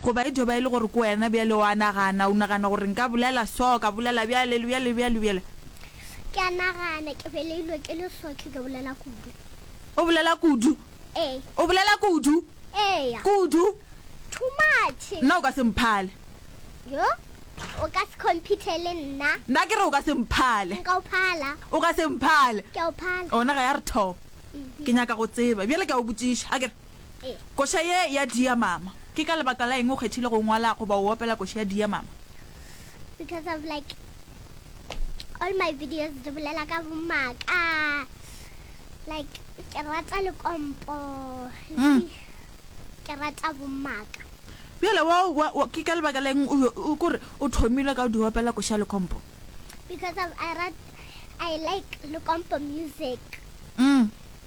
Goba e tlo ba e le gore ke wena bjale o a nagana, o nagana gore nka bolela so, ka bolela bjale, le bjale, le bjale, le bjale. Yes. Ke a nagana, ke beleilwe ke le so, ke tlo bolela kudu. O bolela kudu? Ee. O bolela kudu? Eya. Kudu? Too much. Nna o ka se mphale. Yo, o ka se compete le nna. Nna ke re o ka se mphale. Nka o phala. O ka se mphale. Ke a o phala. Ona ga ya re thoba. Ke nyaka go tseba. Bjale ke a o botšiša, a ke re. Koša ye ya diamama. Ke ka lebaka la eng o kgethile go ngwala goba o opela koša ya diamama? Because of like all my videos di bolela ka bomaka. Like ke rata lekompo. Ke rata bomaka. Bjale wa, wa, wa, ke ka lebaka la eng o, o, ko re o thomile ka o di opela koša ya lekompo? Because of I rat, I like lekompo music.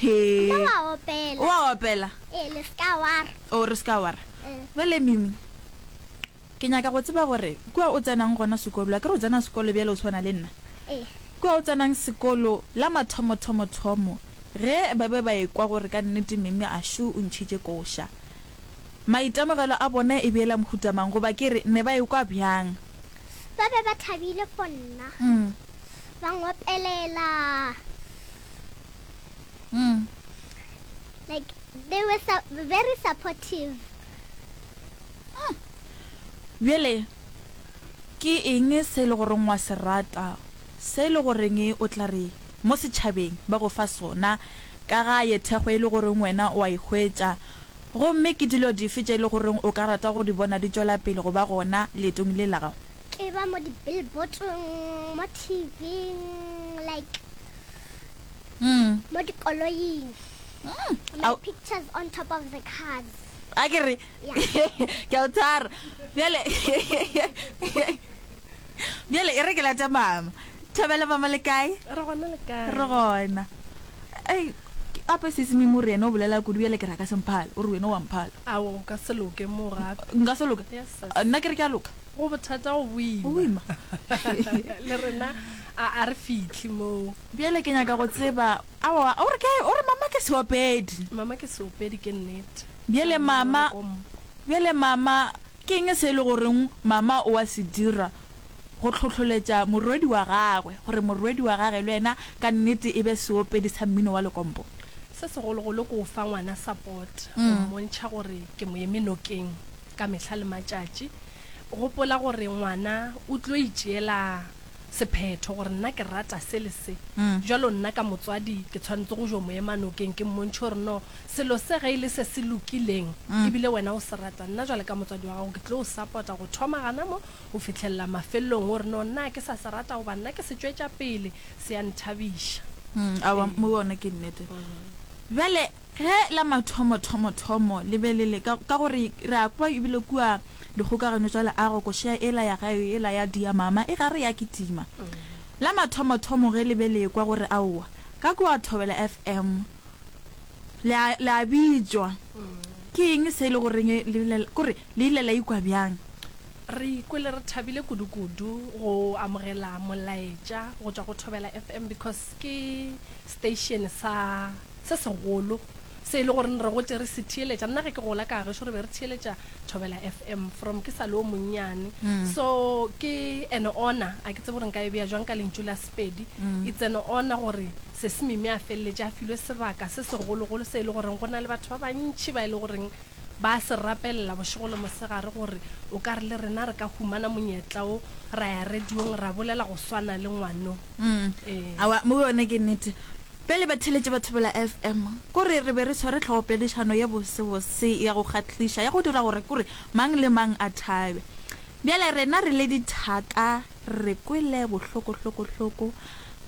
Hee. Mme wa opela. Wa opela. Ee, le se ka wa re. O re se ka wa re. Bjale Mimi, ke nyaka go tseba gore kua o tsenang gona sekolo, a ke re o tsena sekolo bjale o swana le nna? Ee. Kua o tsenang sekolo, la mathomothomothomo ge ba be ba ekwa gore ka nnete Mimi a šo o ntšhitše koša, maitemogelo a bona e be e la mohuta mang goba ke re ne ba ekwa bjang? ba be ba thabile fo nna, ba ngopelela. Like, they were su very supportive. Bjale, ke eng se e le goreng wa se rata, se e le goreng o tla re mo setšhabeng ba go fa sona, ka ga ye thekgo e le goreng wena o a e hwetša? gomme ke dilo dife tše e le goreng o ka rata go di bona di tšwela pele go ba gona leetong le la gago? E ba mo di billboard-ong, mo TV-ing, like mo dikoloing, like pictures on top of the cars. Akere? Ke a o tshwara. Bjale. Bjale e re ke late mama. Thobela mama le kae? Re gona le kae? Re gona. Ei, ke ape sisi mimo re yena o bolela kudu bjale ke ra ka semphala, o re wena wa mphala. Awo go ka se loke mo gape. Nka se loka? Yes sis. Nna ke re ke a loka. Go bothata go boima. Go boima. Le rena a a re fitlhi moo. Bjale ke nyaka go tseba awa o re ke o re mama ke seopedi. Mama ke seopedi ke nnete. Bjale mama bjale mama Ke'ng se e le goreng mama o a se dira go tlhohloletša morwedi wa gagwe gore morwedi wa gage le yena ka nnete e be seopedi sa mmino wa lekompo? Se segologolo ke go fa ngwana support, go mmontšha gore ke mo eme nokeng ka mehla le matšatši. Gopola gore ngwana o tlo itšeela sephetho gore nna ke rata se le se. Bjalo nna ka motswadi ke tshwanetse go jo mo ema nokeng ke mmontšhe gore no selo se ge e le se se lokileng e bile wena o se rata, nna bjale ka motswadi wa gago ke tlo o sapota go thoma gana mo go fihlelela mafelelong gore no nna a ke sa se rata goba nna ke se tšwetša pele se ya nthabiša. Aowa, mo wona ke nnete. Bjale. Ge la mathomothomothomo le be le le, ka, ka gore re a kwa ebile kua dikgokagano tša leago, košea ela ya gayo ela ya diamama e gare ya kitima. La mathomothomo ge le be le ekwa gore aowa, ka kua Thobela FM, le a, le a bitšwa. Ke eng se e le goreng le bile la, kore le ile la ikwa bjang? Re ikwele re thabile kudukudu go amogela molaetša go tšwa go Thobela FM because ke station sa Se segolo, se e le gore re gotše re se theeletša. Nna ge ke gola ka gešo re be re theeletša Thobela FM from ke sa le o monnyane. So ke an honour, a ke tsebe gore nka e bea jwang ka lentšu la Sepedi, it's an honour gore Sesi Mimi a feleletše a filwe sebaka se segologolo se e le goreng go na le batho ba bantši ba e le goreng ba se rapelela bošego le mosegare gore o ka re le rena re ka humana monyetla o ra ya radiong ra bolela go swana le ngwano. Ee. Aowa, mo yone ke nnete. Bjale batheeletši ba Thobela FM, kore re be re sware tlhogopedišano ye bosebose ya go kgahliša ya go dira gore kore mang le mang a thabe. Bjale rena re le dithaka re kwele bohloko-hloko-hloko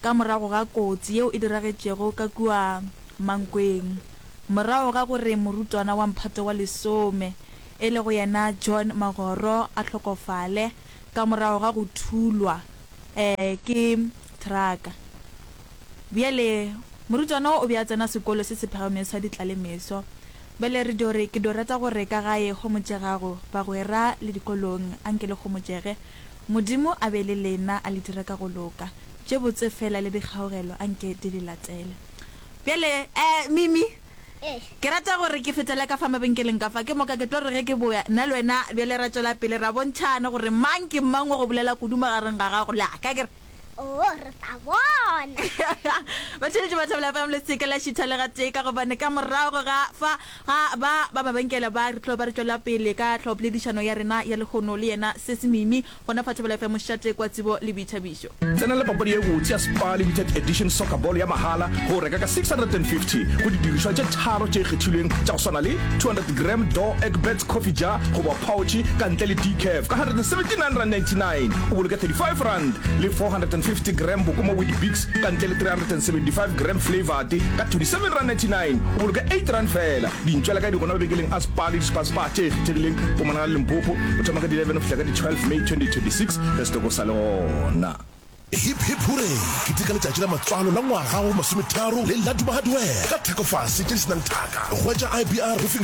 ka morago ga kotsi yeo e diragetšego ka kua Mankweng, morago ga gore morutwana wa mphato wa lesome, e lego yena John Magoro a hlokofale ka morago ga go thulwa ke thraka. Bjale, morutwana wo o be a tsena sekolo se se phagamego sa ditlalemeso. Bjale, re dio re, ke dio rata go re ka ga ye homotšegago, bagwera, le dikolong, anke le homotšege. Modimo a be le lena, a le dire ka go loka. Tše botse feela le dikgaogelo anke di le latele. Bjale, e, Mimi, ke rata go re ke fetele ka fa mabenkeleng ka fa, ke moka ke tlo re ge ke boya, nna le wena bjale ra tšwela pele ra bontšhana gore mang ke mang wa go bolela kudu magareng ga gago le a ka. Ke re, oo re tla bona batheletši ba thabela fm le seke la šitha le gatee ka gobane ka morago ga fa ga ba ba mabenkele ba re tlo ba re tšwela pele ka tlhogopoledišano ya rena ya lekgono le yena sesi mimi gona fa thabela fm šate kwa tsebo le boithabišo Tsenela papadi ye botse ya Spar Limited Edition Soccer Ball ya mahala ge o reka ka 650 go didirišwa tše tharo tše kgethilweng tša go swana le 200 gram Door Egbert Coffee Jar goba phaotšhe ka ntle le decaf ka 179.99 rand. o boloke 35 rand le 450 gram boko mo Weetabix ka ntle le 375 gram flavoured ka 27 rand 99 o boloke 8 rand fela dintšwela ka di gona mabenkeleng a spa le dispa spa tše kgethegileng go monagala limpopo go thoma ka di 11 go fihla ka di 12 may 2026 ge setoko sa le gona Hip hip hurray! Ke teka letšatši la matswalo la ngwaga wa bo masometharo le la dumagadwee ka thekofase tše di senang thaka. Hwetša IBR Roofing